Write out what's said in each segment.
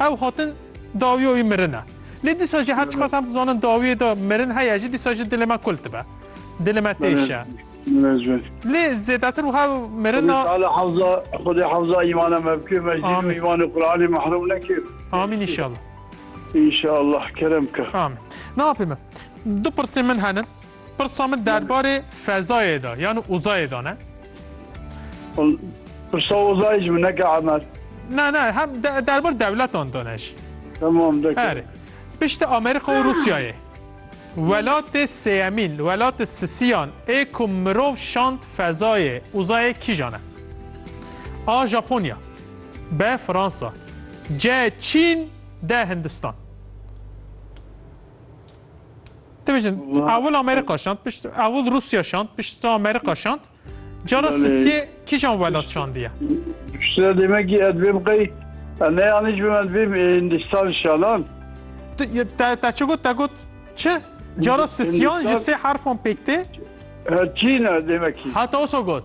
Ew hatin dawî wî mirin e. Lê dîsa jî her çiqas em dizanin dawiyê de mirin heye jî dîsa jî dilê me kul dibe. Dilê me têşe. Lê zêdetir wiha mirin a. Teala hefza Xwedê hefza îmana me bike me jî nû îmanê Quranê mehrum neke. Amîn înşallah. Înşallah kerem bike. Amîn. Navê min. Du pirsên min hene. Pirsa min derbarê fezayê de yan uzayê de ne? Pirsa uzayê ji min neke Emer. Ne ne hem de, derbar dewletan de ne jî. Tamam deke. Erê. Piştî Amerîka û Rûsyayê. Welatê sêyemîn, welatê sisiyan ê ku mirov şand fezayê, uzayê kîjan e? A. Japonya B. Fransa C. Çîn D. Hindistan Dibêjin ewil Amerîka şand pişt ewil Rûsya şand pişt Amerîka şand cara sisiyê kîjan welat şandiye Şira demekî ez bêm qey ne yanî ji min bêm Hindistan şalan te çi got te got çi cara sisiyan ji sê herfan pêk tê Çîn demekî heta wisa got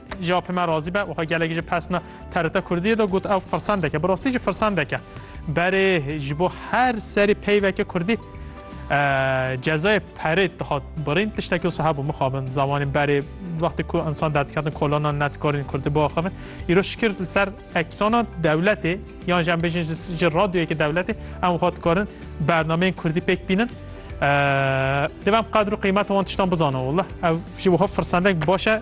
Ji apê me razî be û xwe gelek ji pesna TRT Kurdiyê de got ew firsendek e. Bi rastî jî firsendek e. Berê ji bo her serî peyveke Kurdî cezayê perê dihat birîn tiştekî wisa hebû mixabin zamanê berê wextê ku insan derdiketin kolanan netkarîn Kurdî biaxivin. Îro şikir li ser ekrana dewletê yan ji em bêjin ji radyoyekê dewletê em xwe dikarin bernameyên Kurdî pêk bînin. Divem qadr û qîmet wan tiştan bizana. Wallah ev ji wiha firsendek baş e